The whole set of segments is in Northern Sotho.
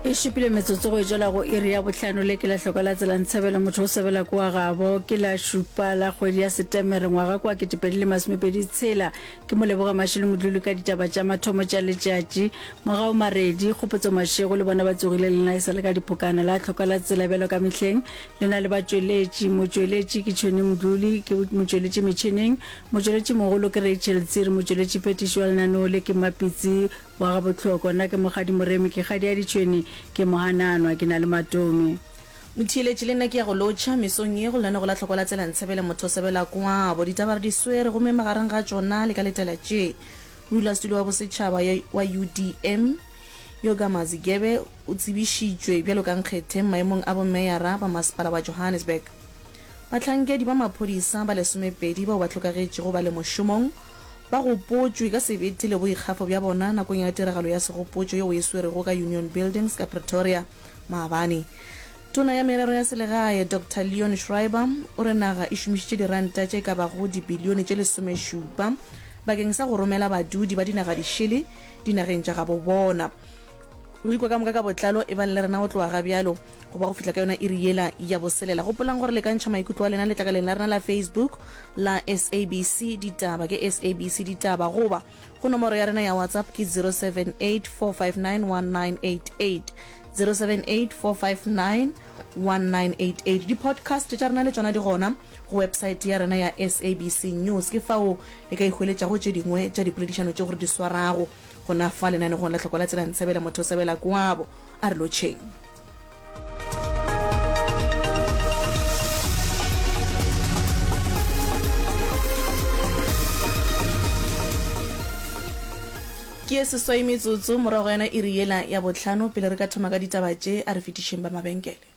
e šupile metsotso go etšwela go iri ya bohlano le ke lahloko la tsela ntshebele motho o sebela kwa gabo ke la šupa la kgwedi ya setemere ngwaga kwa ketepedi le masomepedi tshela ke mo leboga mašele modlulu ka ditaba tša mathomo tša letšatši mogao maredi kgopotso mašego le bona ba tsogile lena e sa le ka dipokana la tlhoka la tsela bjalo ka mehleng le na le batšweletši motšweletši ke tšhone modluli ke motšweletši metšhineng motšweletši mogolo ke rachel tsiri motšweletši phetišo ya lenaneo le ke mapitsi wa ga Bohloko, nna ke Mokgadi Moremi, ke kgadi ya ditšhwene, ke mohananwa, ke na le matomi. Motheeletši, le nna ke ya go lotšha, mesong ye go lane go la hloko la tsela Ntshebele motho sebela kwabo, ditaba re di swere, gomme magareng ga tšona le ka letela tše, modulasetulo wa bosetšhaba wa UDM, Yoga Mazigebe o tsebišitšwe bjalo ka nkgethe maemong a bomeyara ba masepala wa Johannesburg. Bahlankedi ba maphodisa ba lesomepedi bao ba hlokagetšego ba le mošomong Ba gopotšwe ka sebete le boikgafo bja bona nakong ya tiragalo ya segopotšo yeo e swerwego ka Union Buildings ka Pretoria maabane. Tona ya Merero ya Selegae, Doctor Leon Schreiber, o re naga e šomišitše diranta tše ka bago dibilione tše lesomešupa bakeng sa go romela badudi ba dinagadišele dinageng tša gabobona. Ruri kwa ka moka ka botlalo, e bang le rena go tloga ga bjalo go ba go fihla ka yona iri yela ya boselela. Gopolang gore le ka ntšha maikutlo a lena letlakaleng la rena la Facebook la SABC Ditaba, ke SABC Ditaba, goba go nomoro ya rena ya WhatsApp ke 078 459 1988, 078 459 1988. Di-podcast tša rena le tšona di gona go website ya rena ya SABC News, ke fao le ka ihweletšago tše dingwe tša dipoledišano tše gore di swarago. Gona fa lenanegong la Tlhoko la Tsela Ntsebela motho o sebela kwabo. A re lotšheng. ke ye seswai metsotso morago ga yona iri yela ya botlhano pele re ka thoma ka ditaba tše a re fetišeng ba mabenkele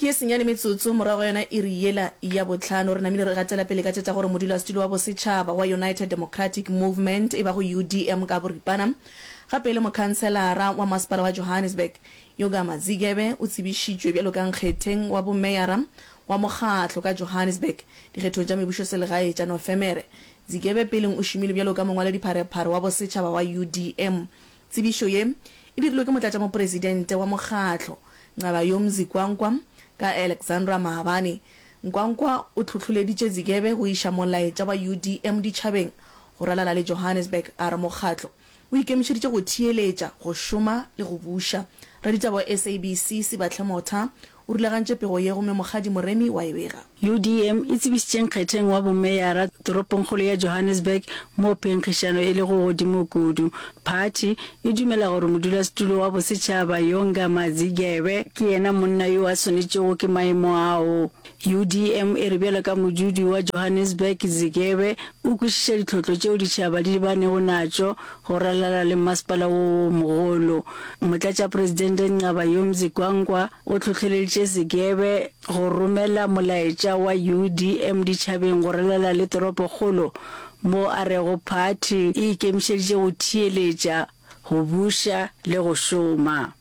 Ke senyane metsotso morago ga yona iri yela ya bohlano, re namile re gatela pele ka tše tša gore modulasetulo wa bosetšhaba wa United Democratic Movement, e bago UDM ka boripana, gape e le mokhanselara wa masepala wa Johannesburg, Yoga Mazigebe o tsebišitšwe bjalo ka nkgetheng wa bomeyara wa mokgatlo ka Johannesburg dikgethong tša mebušoselegae tša Nofemere. Zigebe peleng o šomile bjalo ka mongwaladipharephare wa bosetšhaba wa UDM Tsebišo ye e dirilwe ke Motlatšamopresidente wa mokgatlo, Nqabayomzi Kwankwa, ka Alexandra Maabane. Nkwankwa o tlhohloleditše Zigebe go iša molaetša wa UDM ditšhabeng go ralala le Johannesburg a re mokgatlo o ikemišeditše go theeletša, go šoma le go buša. Raditaba wa SABC Sibahle Motha O rulagantše pego ye gomme Mokgadi Moremi wa e bega. UDM e tsebišitše nkgetheng wa bomeyara toropongkgolo ya Johannesburg, moo phenkgišano e lego godimo kudu. Phathi e dumela gore modulasetulo wa bosetšhaba, Yonga Mazigebe, ke yena monna yo a swanetšego ke maemo ao. UDM e re bjalo ka modudi wa Johannesburg, Zigebe o kwešiša ditlhotlo tšeo ditšhaba di lebanego natšo Go ralala le mmasepala wo wo mogolo, Motlatšapresidente Nqabayomzi Gwangwa o tlhohleleditše Zigebe go romela molaetša wa UDM ditšhabeng go ralala le toropokgolo mo a rego phathi e ikemišeditše go theeletša, go buša le go šoma.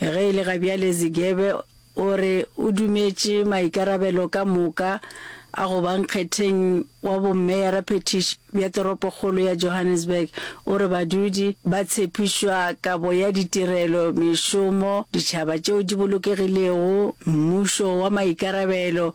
Ge e le ga bjale Zigebe o re o dumetše maikarabelo ka moka a go ba nkgetheng wa bommeyaraphethiši bja toropokgolo ya Johannesburg. O re badudi ba tshepišwa kabo ya ditirelo, mešomo, ditšhaba tšeo di bolokegilego, mmušo wa maikarabelo,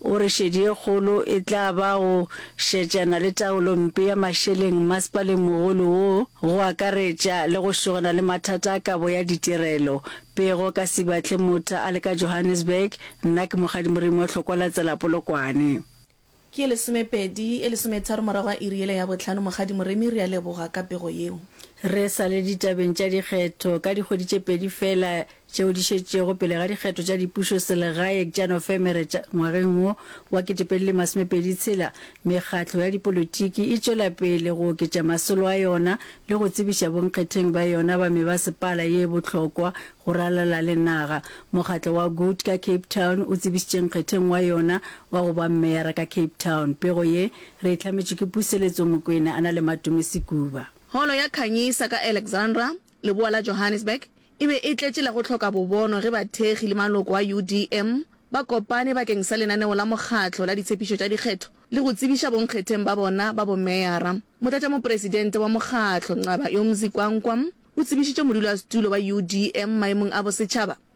O re šedi e kgolo e tla ba go šetšana le taolo mpe ya mašeleng masepaleng mogolo wo, go akaretša le go šogana le mathata a kabo ya ditirelo. Pego ka Sibatle Motha a le ka Johannesburg, Nna ke Mokgadi Morimo, Hlokwa la Tsela Polokwane. Ke lesomepedi e lesometharo morago ga iri yela ya bohlano. Mokgadi Morimi, re a leboga ka pego yeo. Re sa le ditabeng tša dikgetho, ka dikgwedi tše pedi feela tšeo di šetšego pele ga dikgetho tša dipušo selegaeng tša Nofemere tša ngwageng wo wa 2026, mekgatlo ya dipolotiki e tšwela pele go oketša masolo a yona le go tsebiša bonkgetheng ba yona ba mebasepala ye bohlokwa go ralala le naga. Mokgatlo wa Good ka Cape Town o tsebišitše nkgetheng wa yona wa go ba meyara ka Cape Town, Pego ye re e hlametšwe ke Puseletso Mokwena a na le Matome Sekuba. Holo ya Khanyisa ka Alexandra Leboa la Johannesburg e be e tletše la go hloka bobono ge bathekgi le maloko a UDM ba kopane bakeng sa lenaneo la mokgatlo la ditshepišo tša dikgetho le go tsebiša bonkgetheng ba bona ba bomeyara. Motlatšamopresidente wa mokgatlo, Nqaba Yomzi Kwankwa, o tsebišitše modulasetulo wa UDM maemong a bosetšhaba.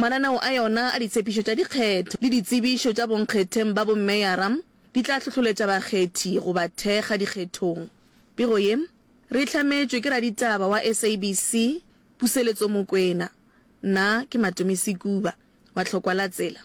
Mananeo a yona a ditshepišo tša dikgetho le ditsebišo tša bonkgetheng ba bomeyara di tla hlohloletša bakgethi go ba thekga dikgethong. Pego ye re e hlametšwe ke raditaba wa SABC Puseletso Mokwena. Nna ke Matomi Sekuba wa Tlhokwa la Tsela.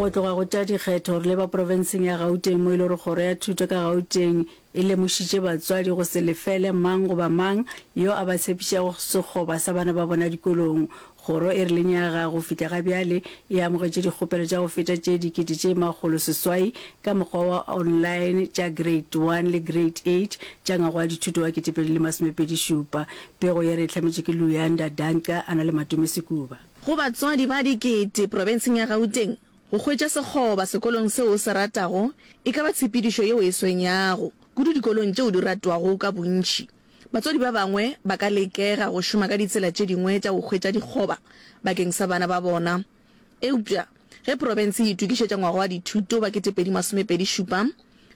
go tloga go tša dikgetho re leba profenseng ya gauteng mo e le gore kgoro ya thuto ka gauteng e lemošitše batswadi go se lefele mang goba mang yo a ba tshepišago sekgoba sa bana ba bona dikolong Kgoro e rileng ya ga go fihla ga bjale e amogetše dikgopelo tša go feta tše dikete tše makgolo seswai ka mokgwa wa online tša Grade One le Grade Eight tša ngwaga wa dithuto wa ketepedi le masomepedi šupa. Pego ye re e hlametše ke Luyanda Danqa a na le Matome Sekuba. Go batswadi ba dikete profenseng ya Gauteng, go hwetša sekgoba sekolong seo o se ratago e ka ba tshepedišo yeo e swenyago kudu dikolong tšeo di ratwago ka bontši. Batswadi ba bangwe ba ka lekega go šoma ka ditsela tše dingwe tša go hwetša dikgoba bakeng sa bana ba bona. Eupša ge profense e itokišetša ngwaga wa dithuto wa 2027,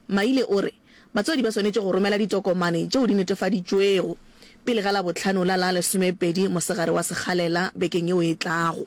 Maile o re batswadi ba swanetše go romela ditokomane tšeo di netefaditšwego pele ga Labohlano la la lesomepedi mosegare wa sekgalela bekeng yeo e tlago.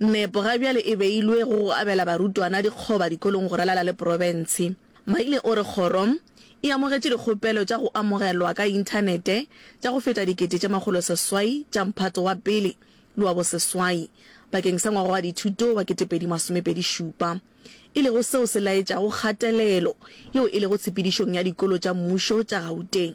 Nepo ga bjale e beilwe go go abela barutwana dikgoba dikolong go ralala le profense. Maile o re kgoro e amogetše dikgopelo tša go amogelwa ka inthanete tša go feta dikete tše makgolo seswai tša mphato wa pele le wa boseswai bakeng sa ngwaga wa dithuto wa ketepedi masomepedi šupa, e lego seo se laetšago kgatelelo yeo e lego tshepedišong ya dikolo tša mmušo tša Gauteng.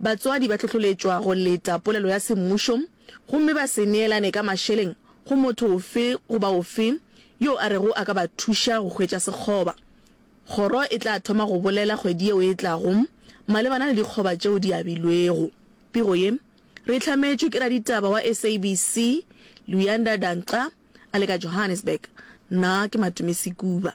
Batswadi ba hlohloletšwa go leta polelo ya semmušo gomme ba se neelane ka mašeleng go motho ofe goba ofe yo a rego a ka ba thuša go hwetša sekgoba. Kgoro e tla thoma go bolela kgwedi yeo e tlago malebana le dikgoba tšeo di abilwego. Pego ye re e hlametšwe ke raditaba wa SABC, Luyanda Danxa, a le ka Johannesburg. Nna ke Matumisi Kuba.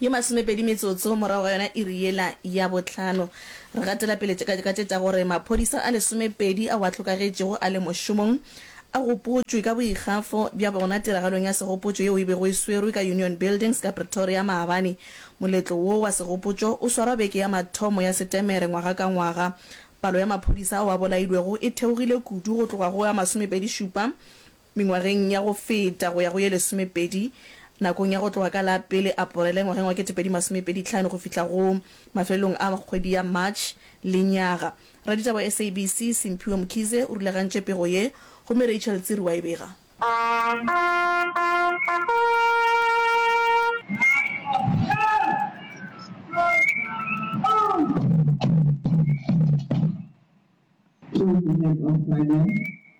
Ye masomepedi metsotso morago ga yona iri yela ya bohlano, re gatela pele tše ka tše tša gore maphodisa a lesomepedi ao a hlokagetšego a le mošomong a gopotšwe ka boikgafo bja bona tiragalong ya segopotšo yeo e bego e swerwe ka Union Buildings ka Pretoria maabane. Moletlo wo wa segopotšo o swarwa beke ya mathomo ya Setemere ngwaga ka ngwaga. Palo ya maphodisa ao a bolailwego e theogile kudu go tloga go a masomepedi-šupa Mengwageng ya go feta go ya go ye lesomepedi, nakong ya go tloga ka la pele Aporele ngwageng wa ketepedi masome pedi hlano go fihla go mafelelong a kgwedi ya March, lenyaga, raditaba wa SABC, Simphiwe Mkhize, o rulagantše pego ye, gomme Rachel Tsiri wa e bega. Choose the next obstacle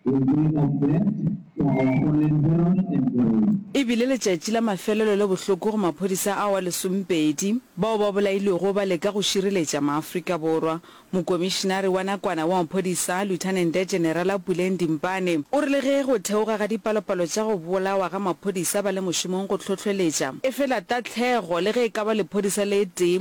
in way of death for our fallen heroes and glory. E bile letšatši la mafelelo le bohloko go maphodisa ao a lesomepedi bao ba bolailwego ba leka go šireletša Maafrika Borwa. Mokomišinari wa nakwana wa maphodisa, Lieutenant-Generala Puleng Dimpane, o re le ge go theoga ga dipalopalo tša go bolawa ga maphodisa ba le mošomong go hlohleletša, efela tahlego, le ge e ka ba lephodisa le tee,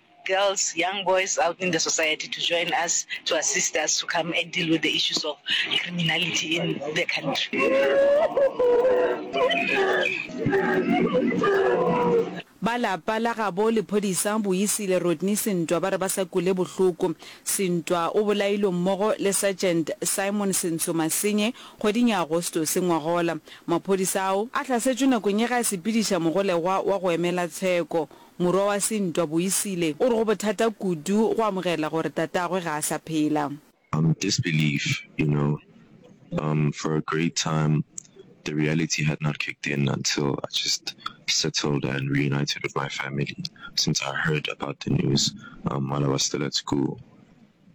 girls, young boys out in the society to join us to assist us to come and deal with the issues of criminality in the country. Ba lapa la gabo lephodisa Boisile Rodney Sintwa ba re ba sa kule bohloko. Sintwa o bolailwe mmogo le Sergeant Simon Sentsho Masenye kgweding ya Agostose ngwaga ola. Maphodisa ao a hlasetšwe nakong ye ge a sepediša mogolegwa wa go emela tsheko Morwa wa Sintwa, Boisile, o re go bothata kudu go amogela gore tatagwe ga a sa phela. Um disbelief, you know, um for a great time the reality had not kicked in until I just settled and reunited with my family since I heard about the news um while I was still at school.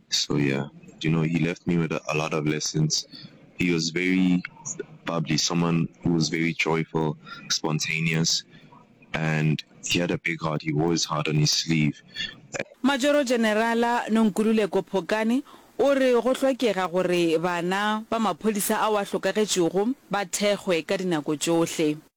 So yeah, you know, he left me with a lot of lessons. He was very bubbly, someone who was very joyful, spontaneous, and he had a big heart. He wore his heart on his sleeve. Majoro Generala Nonkululeko Phokane o re go hlokega gore bana ba maphodisa ao a hlokagetšego ba thekgwe ka dinako tšohle.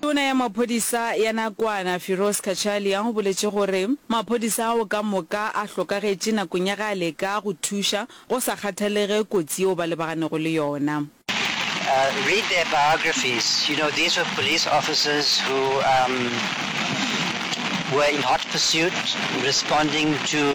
Tona ya maphodisa ya nakwana Firoz Cachalia o boletše gore maphodisa ao ka moka a hlokagetše nakong ya ge a leka go thuša go sa kgathalege kotsi yeo ba lebagannego le yona. Read their biographies, you know these were police officers who were in hot pursuit responding to.